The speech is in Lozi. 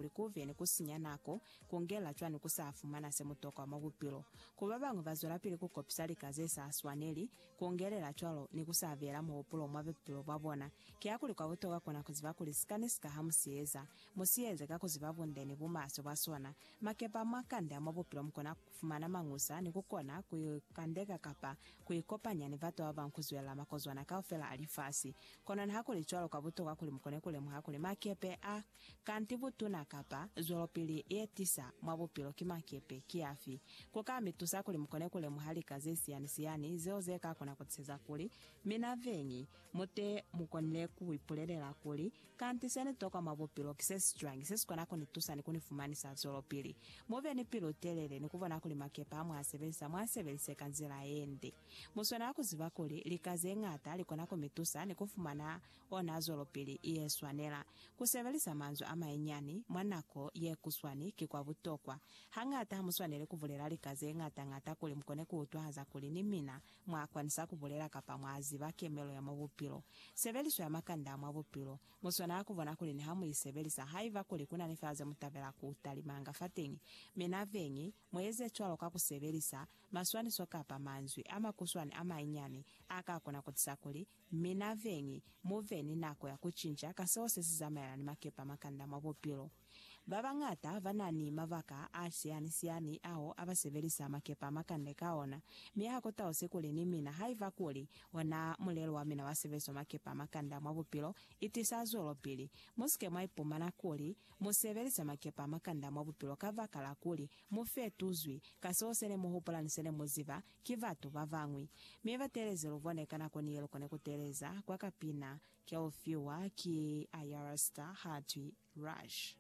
kuli ku vye ni ku sinya nako, ku ngela cwa ni ku sa fumana se mu tokwa mwa bupilo. Ku ba bañwi ba zwelapili ku kopisa lika ze sa swaneli, ku ngelela cwalo ni ku sa beela muhupulo mwa bupilo bwa bona. Kiakuli kwa butokwa kona ku ziba kuli sika ni sika ha mu si eza, mu si eze ka ku ziba bunde ni bumaswe bwa sona. Makepa mwa kanda mwa bupilo mu kona ku fumana mañusa ni ku kona ku ikandeka kapa ku ikopanya ni batu ba bañwi ku zwelela makozwana kaufela a lifasi. Kono nihakulicwalo, kwa butokwa kuli mu kone ku lemuha kuli makepe a Kanti butuna kapa zwelopili ye tisa mwa bupilo ki makepe ki afi? Ku ka mi tusa kuli mu kone ku lemuha lika ze siyani-siyani zeo ze ka kona ku tiseza kuli mina veñi mu te mu konile ku ipulelela kuli, Kanti se ni tokwa mwa bupilo ki se si cwañi se si kona ku ni tusa ni ku ni fumanisa zwelopili? Mu be ni pilu-telele ni ku bona kuli makepe a mwa sebelisa mu a sebelise ka nzila ye nde. Mu swanela ku ziba kuli lika ze ñata li kona ku mi tusa ni ku fumana ona zwelopili ye swanela. Ku sebelisa manzwi a manyinyani mwa nako ye kuswani ki kwa butokwa. Hañata ha mu swaneli ku bulela lika ze ñata-ñata kuli mu kone ku utwahaza kuli ni mina mwa kwanisa ku bulela kapa mwa ziba kemelo ya mwa bupilo. Sebeliso ya makanda a mwa bupilo mu swanela ku bona kuli ni ha mu i sebelisa. Haiba kuli ku na ni fela ze mu tabela ku talimanga fateñi, mi na beñi mu eze cwalo ka ku sebelisa maswaniso kapa manzwi a makuswani a manyinyani a ka kona ku tisa kuli Mi na veni, mu ve ni nako ya ku cinca ka seo se si zamaelana ni makepe a makanda mwa bupilo. Ba bañata ba na ni mabaka a siani-siani ao a ba sebelisa makepe a makande ka ona, mi ha ku tausi kuli ni mina haiba kuli ona mulelo wa mina wa sebeliso makepe a makanda mwa bupilo i tisa zwelopili. Mu si ke mwa ipumana kuli mu sebelisa makepe a makanda mwa bupilo kabakala kuli mu fetuzwi ka seo se ne mu hupula ni se ne mu ziba Ki batu babañwi, mi batelezi lubone ka nako niye lukone kuteleza kwa kapina keufiwa ki Ayar Starr hatwi Rush.